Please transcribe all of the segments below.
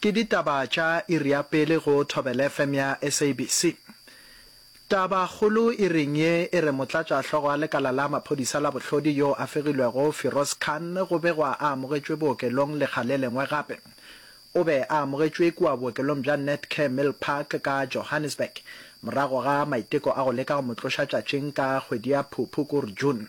Ke ditaba tša iri ya pele go ThobelFm ya SABC. Taba kgolo iring ye e re motlatša hlogo a lekala la maphodisa la bohlodi yo a fegilwego Firoz Khan go begwa a amogetšwe bookelong lekga le lengwe gape. O be a amogetšwe kua bookelong bja Netcare Milpark ka Johannesburg morago ga maiteko a go leka go mo tloša tšatšing ka kgwedi ya Phuphu kor June.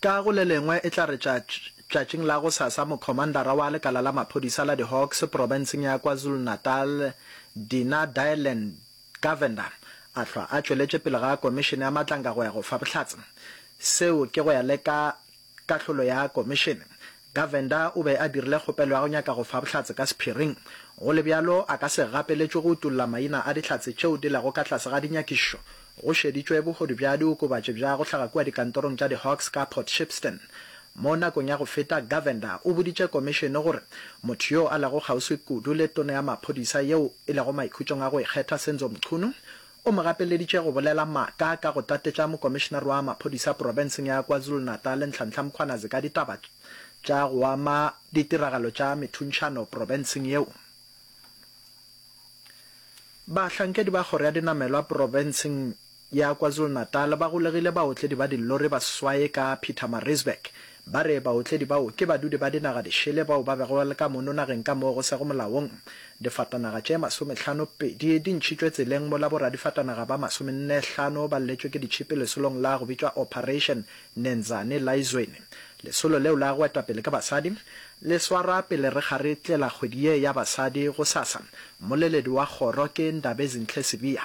Ka go le lengwe, e tla re tša, tšatšing la gosasa, mokhomandara wa lekala la maphodisa la di-Hawks profenseng ya KwaZulu-Natal, Dina Dylan Govender, a hlwa a tšweletše pele ga komišene ya Matlanga go ya go fa bohlatse. Seo ke go ya le ka kahlolo ya komišene. Govender o be a dirile kgopelo ya go nyaka go fa bohlatse ka sephiring. Go le bjalo, a ka se gapeletšwe go utolla maina a dihlatse tšeo di lego ka tlase ga dinyakišišo. Go šeditšwe bohodu bja diokobatši bja go hlaga kua dikantorong tša di-Hawks ka Port Shepstone. Mo nakong ya go feta, Govender o boditše komišene gore motho yo a lego kgauswi kudu le Tona ya Maphodisa yeo e lego maikhutšong a go ikgetha, Senzo Mchunu, O mo gapeleditše go bolela maaka ka go tatetša mokomišenare wa maphodisa profenseng ya KwaZulu-Natal Nhlanhla Mkhwanazi ka ditaba tša go ama ditiragalo tša methuntšhano profenseng yeo. Bahlankedi ba kgoro ya dinamelwa profenseng ya KwaZulu-Natal ba golegile baotledi ba dillori ba seswaye ka Pietermaritzburg Ba re baotledi bao ke badudi ba dinaga di šele bao ba bego le ka mono nageng ka moo go sego molaong. Difatanaga tše masomehlano pedi di ntšhitšwe tseleng mola boradifatanaga ba masomenne hlano ba lletšwe ke ditšhipi lesolong la go bitšwa Operation Nenzani la Izweni. Lesolo leo la go etwa pele ke basadi le swarwa pele re ga re tlela kgwedi ye ya basadi gosasa. Mmoleledi wa kgoro ke Ndabezinhle Sibiya.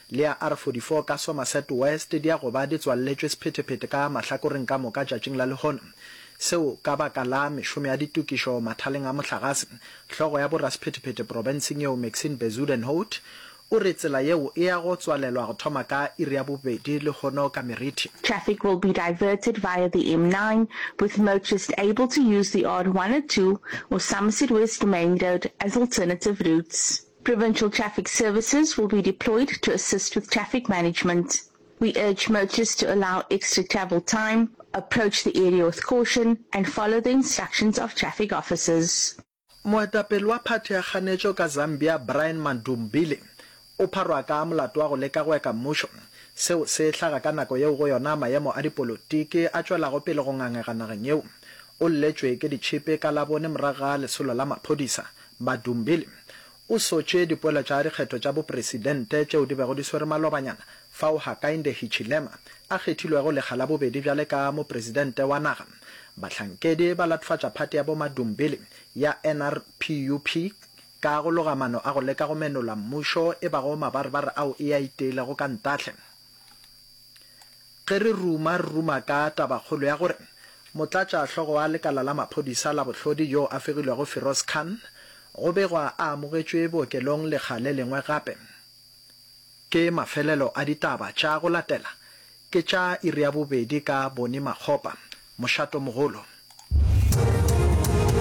le ya R44 ka Somerset West di a go ba di tswalletšwe sephetephete ka mahlakoreng ka moka tšatšing la lehono. Seo ka baka la mešomo ya ditokišo mathaleng a mohlagase. Hlogo ya borasephetephete profenseng yeo Maxine Bezuidenhout o re tsela yeo e ya go tswalelwa go thoma ka iri ya bobedi lehono ka Merithi. Traffic will be diverted via the M9, with motorists able to use the R102 or Somerset West Main Road as alternative routes. Provincial Traffic Services will be deployed to assist with traffic management. We urge motorists to allow extra travel time, approach the area with caution and follow the instructions of traffic officers. Moetapele wa phathi ya kganetšo ka Zambia Brian Mandubile o pharwa ka molato wa go leka go eka mmušo. Seo se hlaga ka nako yeo go yona mayemo a dipolotiki a tšwelago pele go ngangega nageng yeo. O lletšwe ke ditšhipi ka Labone morago ga lesolo la maphodisa Madumbili o sotše dipoelo tša dikgetho tša bopresidente tšeo di bego di swere malobanyana fao Hakainde Hichilema a kgethilwego lekga la bobedi bjale ka mopresidente wa naga. Bahlankedi ba latofatša phathi ya bo-Madumbili ya NRPUP ka go loga mano a go leka go menola mmušo e bago mabarebare ao e a iteilego ka ntahle. Ge re ruma, re ruma ka tabakgolo ya gore motlatšahlogo wa lekala la maphodisa la bohlodi yo a fegilwego Firoz Khan go begwa a amogetšwe bookelong lekga le lengwe gape. Ke mafelelo a ditaba tša go latela, ke tša iri ya bobedi ka Bonnie Makgopa, Mošatomogolo.